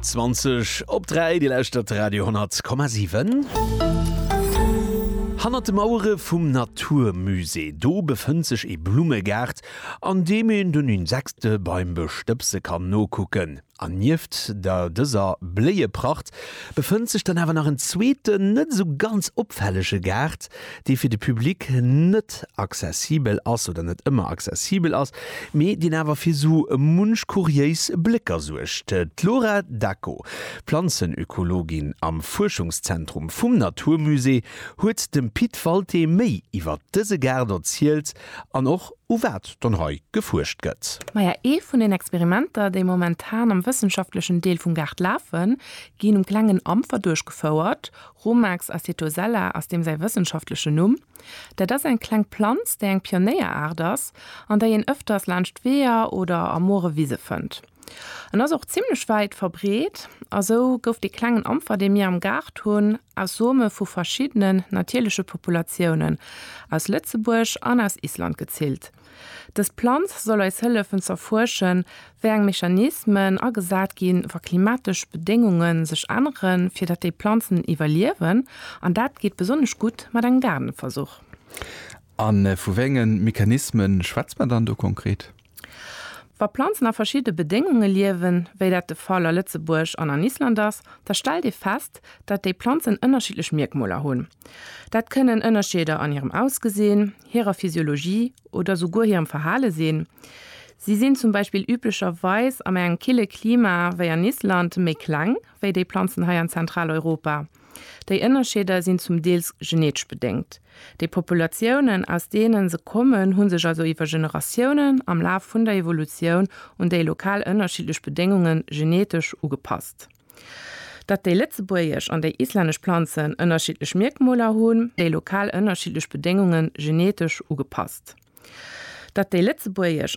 20 op 3, Dir lauschtert Radio 10,7. Hannert de Mauere vum Naturmusée, do befënnt sech ee Blummegaart, an deem een den Insekte beim Bestëbse kann nokucken. An nieft der dëser Bléiepracht befënnt sech dann awer nach en zweeten, net esou ganz opfällege Gaart, dee fir de Public net accessibel ass oder net ëmmer accessibel ass, mee deen awer fir sou munch kuriéis Blécker suergt. D'Laura Dacko, Planzenökologin am Fuerschungszentrum vum Naturmusée, huet dem Pit Walté méi iwwer dëse Gaart erzielt an och u wat dann hei gefuerscht gëtt. Maja, ee vun den Experimenter, déi momentan am wëssenschaftlechen Deel vum Gaart lafen, ginn um klengen Ampfer duerchgefouert, Rumex acetosella ass deem säi wëssenschaftlechen Numm. Dat ass eng kleng Planz, déi eng Pionéieraart ass an déi een ëfters laanscht Weeër oder a moere Wise fënnt. En ass och zimmlech wäit verbreet a sou gouf dee klengen Ampfer, dee mir am Gaart hunn, aus Some vu verschiddenen natierleche Populatiounen aus Lëtzebuerg an aus Island gezillt. Dës Planz soll eis hëllefen z'erfuerschen, wéi eng Mechanismen agesat ginn, wa klimatesch Bedéngunge sech änneren, fir datt déi Planzen iwwerliewen. An dat geet besonnesch gutt mat engem Gaardenversuch. A vu wéi enge Mechanisme schwätze mer dann do konkret? Wa Planzen a verschiddene Bedéngunge liewen, wéi dat de Fall a Lëtzebuerg an an Island ass, da stellt ee fest, datt déi Planzen ënnerschiddlech Mierkmoler hunn. Dat kënnen Ënnerscheeder an hirem Ausgesinn, hirer Physiologie oder souguer hirem Verhale sinn. Si sinn zum Beispill üblecherweis an engem kille Klima wéi an Island méi kleng wéi déi Planzen hei an Zentraleuropa. Déi Ënnerscheeder sinn zum Deels genetesch bedéngt. Déi Populatiounen, aus deene se kommen, hu sech also iwwer Generatiounen am Laf vun der Evolutioun un déi lokal ënnerschiddlech Bedéngunge genetesch ugepasst. Datt déi lëtzebuergesch an déi islännesch Planzen ënnerschiddlech Mierkmoler hunn, déi lokal ënnerschiddlech Bedéngunge genetesch ugepasst. Datt déi lëtzebuergesch.